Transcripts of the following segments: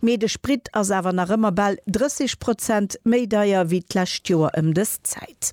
Mee de Sprit ass awer nach ëmmer bal 30 Prozent méi deier wéi d'lescht Joer ëm dës Zäit.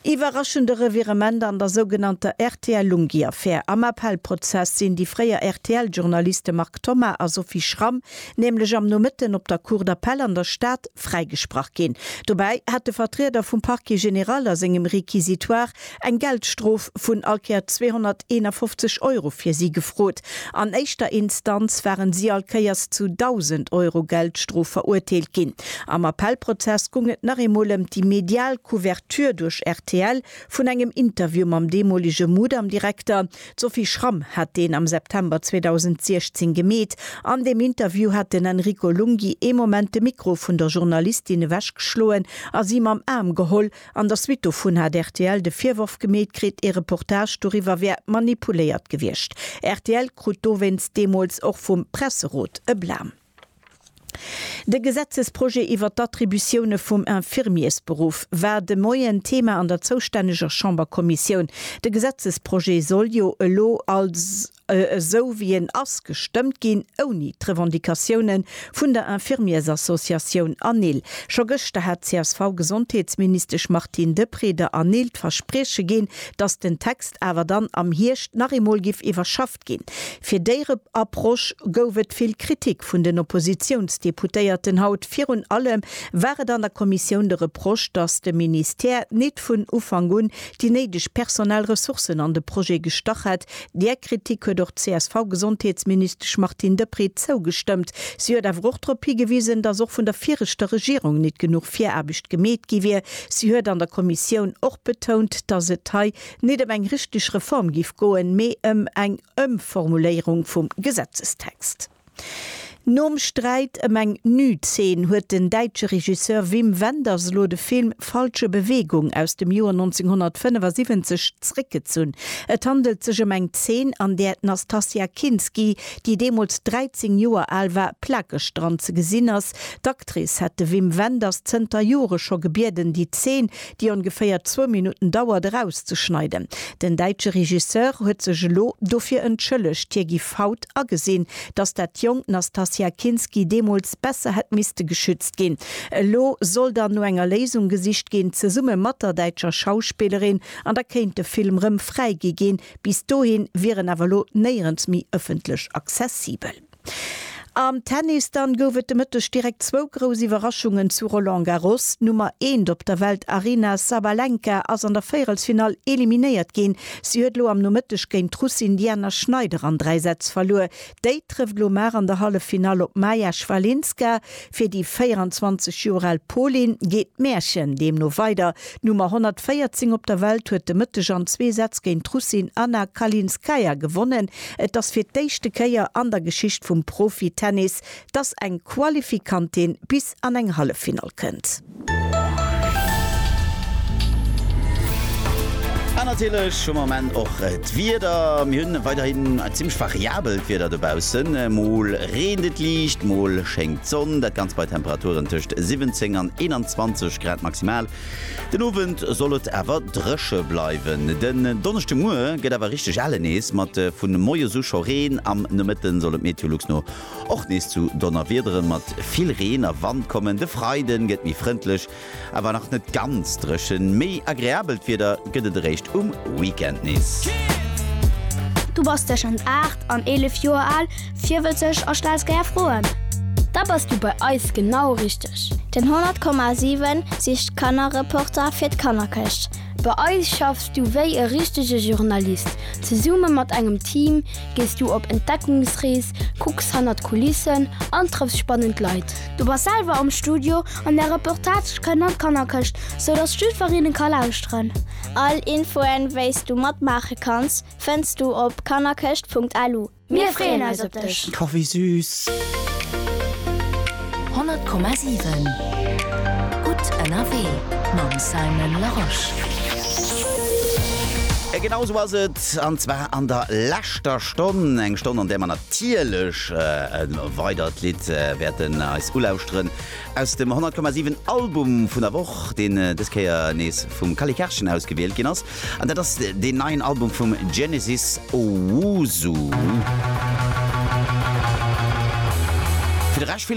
Iwwerraschende Revirement an der sougenannter RTL-Lunghi-Affär, Am Appellprozess sinn déi fréier RTL-Journaliste Marc Thomas a Sophie Schramm nämlech am Nomëtten op der Cour d'Appel an der Stad fräigesprach ginn. Dobäi hat de Vertrieder vum Parquet général a sengem Réquisitoire eng Geldstrof vun all Kéier 251 Euro fir si gefrot. An éischter Instanz waren si all Kéiers zu 1.000 Euro Geldstrof verurteelt ginn. Am Appellprozess gung et nach eemol ëm déi medial Couverture duerch rtl vun engem Interview mam deemolege Mudam-Direkter. D'Sophie Schramm hat deen am September 2016 gemeet. An deem Interview hat den Enrico Lunghi ee Moment de Mikro vun der Journalistin ewechgeschloen a si mam Aarm geholl, An der Suite dovun hat rtl de Virworf gemeet kritt, ee Reportage doriwwer wär manipuléiert gewiescht. Rtl krut dowéinst deemools och vum Presserot e Blam. De Gesetzesprojet iwwer d'Attributioune vum Infirmiersberuff war de Moien Thema an der zoustänneger Chamberkommissioun. De Gesetzesprojet soll jo elo als. esou wéi en ass, gestëmmt ginn, ouni d'Revendicatioune vun der Infirmiersassociatioun ANIL. Scho gëschter hat d'CSV-Gesondheetsministesch Martine Deprez der ANIL d'Versprieche ginn, datt den Text awer dann am Hierscht nach eemol giff iwwerschafft ginn. Fir déi Approche gouf et vill Kritik vun den Oppositiounsdeputéierten. Haut virun allem war et an der Kommissioun de Reproche, datt de Ministère nit vun Ufank un déi néideg personell Ressourcen an de Projet gestach hätt, Där Kritik huet och d'CSV-Gesondheetsministesch Martine Deprez zougestëmmt. Si huet awer och drop higewisen, datt och vun der viregter Regierung nit genuch Viraarbecht gemeet gi wier. Si huet an der Kommissioun och betount, datt et hei nit ëm eng richteg Reform giff goen, mee ëm eng Ëmformuléierung vum Gesetzestext. Nom Sträit ëm eng Nützeen huet den däitsche Regisseur Wim Wenders elo de Film Falsche Bewegung aus dem Joer 1975 zréckgezunn. Et handelt sech ëm eng Zeen, an där d'Nastassja Kinski, déi deemools 13 Joer al war, plakeg dran ze gesinn ass. D'Actrice hätt de Wim Wenders zënter Jore scho gebieden, déi Zeen déi ongeféier zwou Minutten dauert, erauszeschneiden. Den däitsche Regisseur huet sech elo dofir entschëllegt. Hie giff haut agesinn, datt dat jonkt Nastassja Kinski deemools besser hätt misste geschützt ginn. Elo soll dann no enger Léisung gesicht ginn, zesumme mat der däitscher Schauspillerin, an da kéint de Film rëm fräigi ginn. Bis dohi wier en awer elo néierens méi ëffentlech accessibel. Am Tennis dann gouf et de Mëtteg direkt zwou grouss Iwwerraschungen zu Roland Garros. D'Nummer eent op der Welt Aryna Sabalenka ass an der Véierelsfinall eliminéiert ginn. Si huet elo am Nomëtteg géint d'Russin Diana Schneider an dräi Sätz verluer. Déi trëfft elo mar an der Hallefffinall op d'Maja Schwalinska. Fir déi 24 Joer al Pauline geet d'Märchen deemno weider. D'Nummer 114 op der Welt huet de Mëtteg an zwee Sätz géint d'Russin Anna Kalinskaya gewonnen. Et ass fir d'éischte Kéier an der Geschicht vum Profitennis, dass eng Qualifikantin bis an eng Halleffinall kënnt. An natierlech hu mer am Enn och d'Wieder. Mir hunn weiderhin e zimmlech variabelt Wieder dobaussen. Mol reent et liicht, mol schéngt d'Sonn. Dat Ganzt bei Temperaturen tëscht 17 an 21 Grad maximal. Den Owend soll et awer dréche bleiwen. Den Donneschdemuer gëtt awer richteg ale nees, mat vun moies u scho Reen. Am Nomëtte soll et Meteolux no Och nees zu Donnerwiederen mat vill Reen a Wand kommen. De Freiden gëtt méi frëndlech, awer nach net ganz dréchen. Méi agreabelt Wieder gëtt et eréischt um Weekend nees. Du bass tëschent 8 an 11 Joer al, virwëtzeg a stells gär Froen? Da bass du bei eis genau richteg! Den 100,7 sicht d'Kannerreporter fir d'Kannerkëscht. Bei eis schaffs du wéi e richtege Journalist, zesumme mat engem Team, Gees du op Entdeckungsrees, kucks hannert d'Kulissen an trëffs spannend Leit. Du bass selwer am Studio an där Reportage kënnt an d'Kannerkëscht, sou dass d'Stüferinne ka lauschteren. All Infoen, wéis du matmaache kanns, fënns du op kannerkëscht.lu. Mir freeën eis op dech! Oh wéi süß! 100,7 Gutt ënnerwee mam Simon Larosche. A genau esou ass et. Wort, an zwar an der leschter Stonn, eng Stonn, an där mer natierlech e weidert Lidd wäerten eis ulauschteren aus dem 100,7 Album vun der Woch, deen dës Kéier nees vum Kali Karschen ausgewielt ginn ass. An dat ass deen neien Album vum Genesis Owusu.